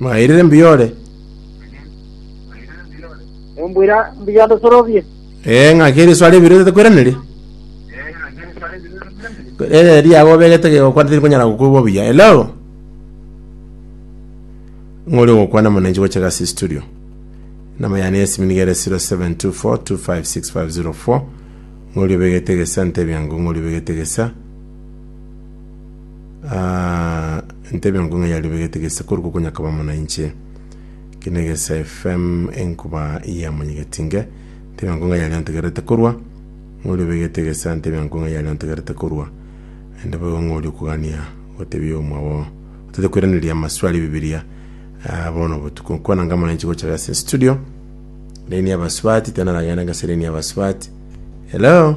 Mwairire mbuya ore? Nimbwira mbuya onde sorobie. Ee, ng'aki eriswa ribire otakwiraneria? Ere riago obegete gegokwana tirikonyara gokwigwa buya. Hello? Ng'ori ogokwana mwananchi gocha gasi studio. Namba yane ya simu niga ere 0724256504. Ng'ori obegete gesa ntebia ng'o ng'ori obegete gesa. Aah intebe enku ng'a yaribegete gese korwa gokonyakaba mono inche kina gese FM enkuba yamonyegeti nge intebe enku ng'a yariontegerete korwa ng'oribegete gese intebe enku ng'a yariontegerete korwa ende boigo ng'ori okogania gotebia omwabo otete koiraneria amaswali ebibiria Ah, bono obotuko nkwana nga mono inche gocha gase studio laini y'abasubati tenaragenda gase laini y'abasubati hello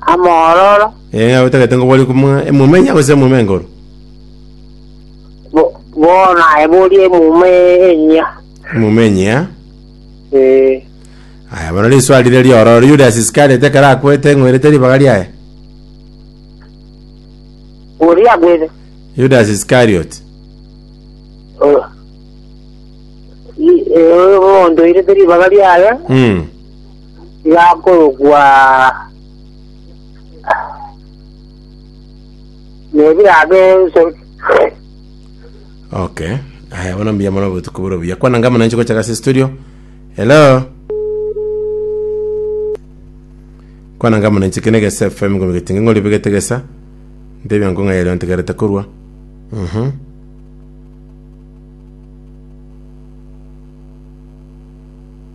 amororo, Ee, otagete ngo bori komwa emumenya gose emuma engoru? bo- bono aye bori emuma enyia. Emuma enyia. Ee, Aya, bono riswali rire riororo, Yudas Iskariot ekero akwete ng'werete ribaga riaye? oria agwete. Yudas Iskariot. O- i- ee, omonto oirete ribaga riaye, Mm. yakorokwa nebirabe ense okay aya bono mbuya mono obotuko bore buya kwana ngamo nanche gocha gase studio hello kwana ngamo nanche kene gese fm ngomi getinge ngori bigete gesa ndebia nkonga yero ntigarete korwa mhm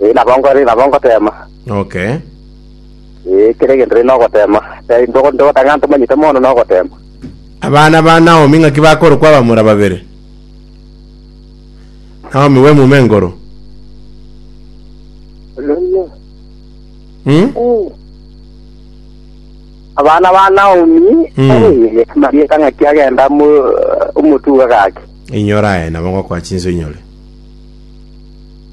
Ee, nabo nkore, nabo ngoteema. Okay. Ee, kera egento rende nogoteema. Te- ntogo- Ntogotanga ntomanyete mono nogoteema. Abana ba Naomi ng'aki bakorokwa abamura babere? Naomi bw'emuma enkoro. Hmm? Abana ba Naomi, Mm. ee, marieta ng'aki agenda mu- omotuga gaki. Inyora aye nabo ngokoa chinso inyore.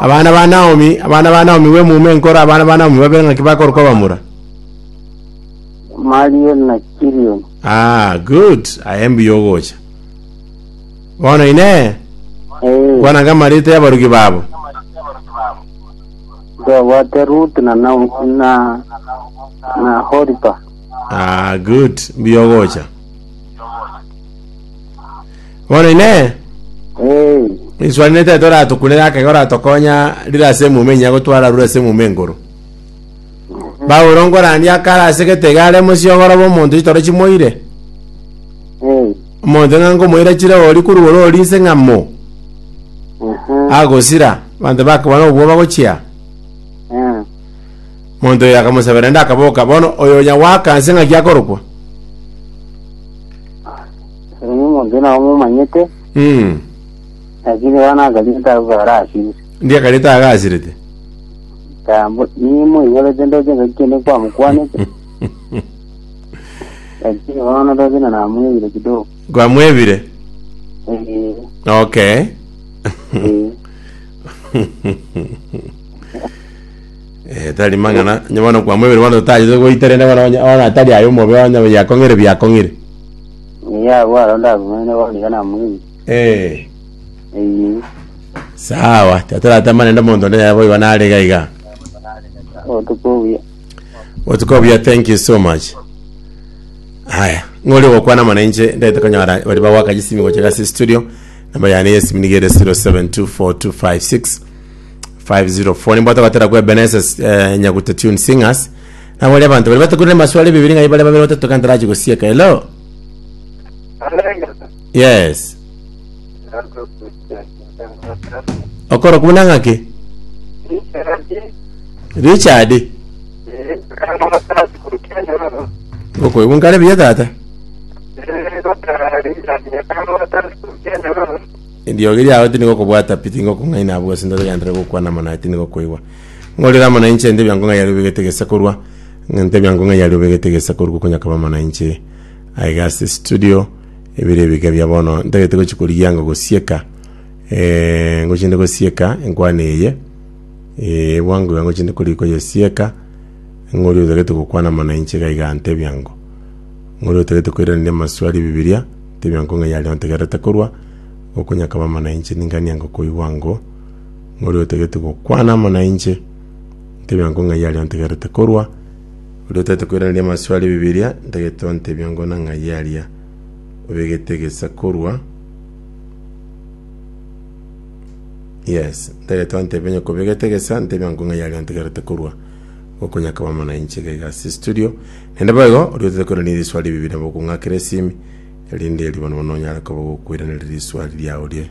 Abana ba Naomi, abana ba Naomi bw'emuma enkoro, abana ba Naomi babere ng'aki bakorokwa bamura? Malioni na Kilioni. Ah, good. Aye mbuya ogocha. Bono inee, Eh, kwananga amareeta y'abarugi babo? twabwate Ruth na Nao- na na Horipa. Ah, good. Mbuya ogocha. Bono Inee, Ee, riswali nete toratokunere akega oratokonya rire ase emuma enyia gotwara arure ase emuma enkoro? Paulo nkorandia akare ase getege are mosiogoro bw'omonto chitoro chimoire. ee, Omonto ng'a nkomoira chire ori korwa ore ori nse ng'a mo aha, agosira abanto bakobana obwoba gochia. ah, Monto oyo akamosabera ende akaboka. Bono oyo onya gwaka nse ng'aki akorokwa? Oyo omonto nao momanyete, Mm. lakini bono akariete agwo arasire. Ndi akarete agasirete. Tambo nimoigorete ndoche ngaki kende kwamokwanete, lakini bono ndoche na namwebire kidogo. Kwamwebire. Eh, Okay. eh. Eh, tari mang'ana nyobono kwamwebire bono totagete goita rende bono onye- bono atari aye omobe onye yakong'ire biakong'ire Ee, agwo aro ndagwenerete bono iga namoenyete. Ee, Ee, sawa. Tatoratama naende omonto onde yaye boigo nare iga iga. obotuko obuya. Botuko obuya, thank you so much. Haya, ng'ori ogokwana mono inche ndagete konyora bari bagwaka chisimi gocha gase studio. Namba yane yesimi niga ere 0724256504 nimbwate gotera kwa Ebenezer eh, Nyaguta Tune Singers Nabo baria abanto baria batakurire maswali ebibiri ng'ai bare babere batatu ekero ntarachie gosieka. Hello? Yes. Okorokwa buna ng'aki? Richard? Okoigwa nkare buya tata? Eriogi riao tinigokobwata pi, tingokong'aina abwo ase ntogenderera gokwana mono aye tinigokwoigwa. Ng'orere amo nainche, ente biango ng'ai aria obegete gese korwa? Ente biango ng'ai aria obegete gese korwa okonyakaba amo nainche? Aiga ase estudio, ebire ebiga bia bono, ntagete gochia korigia anga gosieka, eh, ngochia inde gosieka enkwana eye, eh, ebwango iga ngochia inde korigia koyesieka, ng'oria otagete gokwana amo nainche iga iga ente biango. Ng'oria otagete koiraneria amaswali a Bibilia, ente biango ng'ai aria ontegerete korwa okonyakaba amo nainche? Ningania ngokoigwa ango. Oria otegete gokwana amo nainche, ntebie ango ng'ai aria ontegerete korwa. Oria otagete koiraneria amasio aria 'Ebibiria, ntagete ontebie ango na ng'ai aria obegete egesa korwa. Yes, ntagete ontebie onye kobegete egesa, ntebie ango ng'ai aria ontegerete korwa. Okonya akaba amo nainche iga iga ase estudio. Naende boigo, oria otagete koiraneria eriswari 'Ebibiria, nabo okong'akera esimi, erinde erio bono bono onyare koba ogokoiraneria riswari riao rie.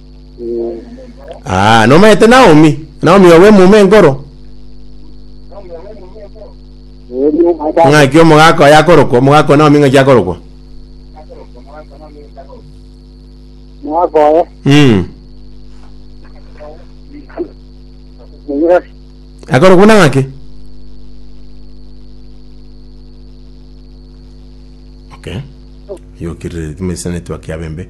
Ah, nomaete Naomi? Naomi obo emuma enkoro? Ng'aki omogaka oye akorokwa? Omogaka o Naomi ng'aki akorokwa? mwakoye Mm. monyasi Akorokwa na ng'aki? Okay. Yokirire timesane twakia bembe.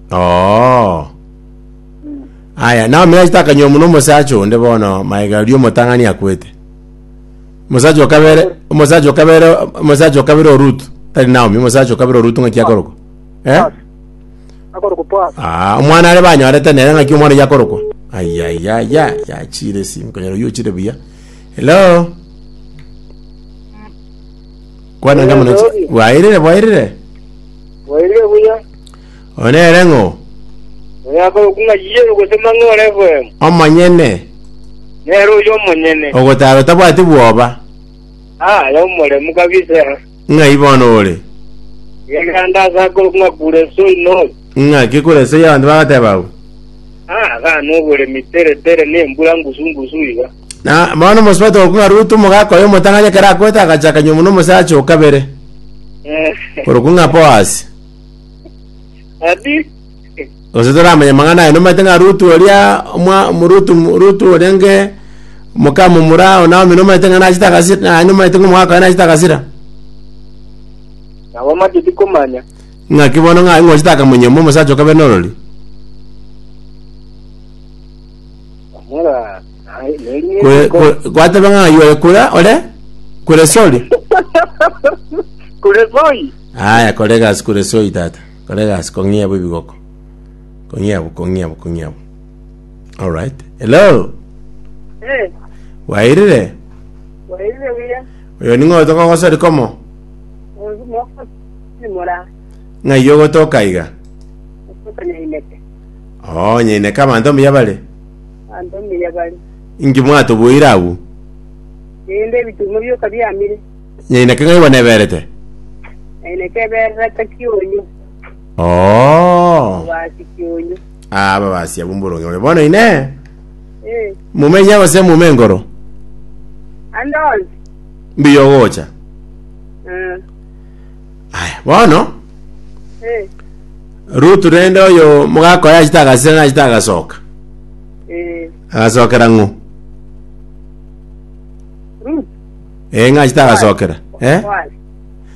Oo. Aya, Naomi nachete akanywa omuno omosacha onde bono maega aria omotang'ani akwete. Omosacha okabere, omosacha okabere, omosacha okabere o Rutu, tari Naomi, omosacha okabere o Rutu ng'aki akorokwa. Eh? akorokwa Boaz. Ah, omwana are banyorete nere ng'aki omwana oyo akorokwa. Ayayaya, yachire si, nkonyora oyo ochire buya. Hello? Kwana ngamo nochi. Bwairire, bwairire. Wairire buya. Oyo nere ng'o? Oyo akorokwa ng'a Yesu gose Mang'oro FM, Omonyene, nere oyio omonyene. ogotara otabwati bwoba, Aa, aye omoremu kabisa. ng'ai bono ore? Egerande ase akorokwa ng'a Kureso Inori. Ng'aki Kureso ya abanto bagateba abwo? Aa, agane oboremi tere tere na embura ngusu ngusu iga. Na bono omosubati okorokwa ng'a Rutu omogaka oyo omotang'ani ekero akoete agacha akanywa buna omosacha o kabere, korokwa ng'a Boasi. Abi Gose toramanya amang'ana aye, nomaete ng'a Rutu oria omwa Rutu Rutu oria nge moka momura o Naomi nomaete ng'a nachete agasira, naye nomaete ng'a omogaka oye nachete agasira. nabo amacheti komanya. Ng'aki bono ng'a ing'ochete akamonyia mwa omosacha okabe norori? Amora naye neri Kore- niko. kore- Gwateba ng'a yore kura ore kure sori. Kure zoi. Aaya, kora egasi kore soy, tata. Kora egasi, kong'ia abwo ebigoko. Kong'ia abwo, kong'ia abwo, kong'ia abwo. All right. Hello? Eh, Wairire? wairire buya. Oyo ning'o otoka gosori komo? Ozu moko ni mora. Ng'ai ogotoka iga? Otoka nyaineke. Oo, nyaineka abanto mbuya bare. Anto mbuya bari. Inki mwatoboire agwo? Rinde ebitumo bioka biamire. Ng'ai naki ng'ai bwaneberete? Ng'ai naki ebererete kionyu, Oo. obasi kionyu. Ah, ababasia b'omboronge bore. Bono ine Eh, mumenye gose mume enkoro? ande onsi. Mbuya ogocha. Eh, Aya, bono eh, Rutu rende oyo mogakora achita agasira na achita agasoka. eh. Agasokera ng'o? Ruth, Eh, ng'a chitagasokera. Eh? Kwale.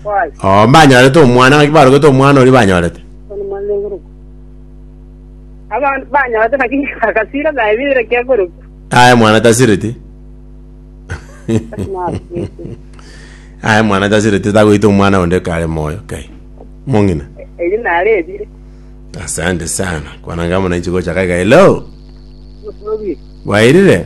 Kwale. Oh, banyorete omwana, ng'aki barogete omwana oria banyorete. Ono mwana ogorokwa. Abantu banyorete naki agasira naye bire kiagorokwa. Aye mwana tasireti. Aye mwana tasireti tagoita omwana onde kare moyo kai. Mong'ina. Eyi nare ebire. Asante sana. Kwana ngamo na ichigo chakaga. Hello. Musobi. Wairire?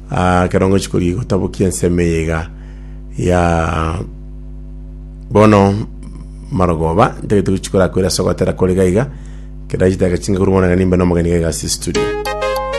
Aa, ekero ngochia kori gotabokia ensemo eye iga ya bono marogoba, ntagete gochia korakwera ase ogotera kore iga iga, kera chidakika chinke korwa bono iga nimbe nomogeni iga iga ase estudio.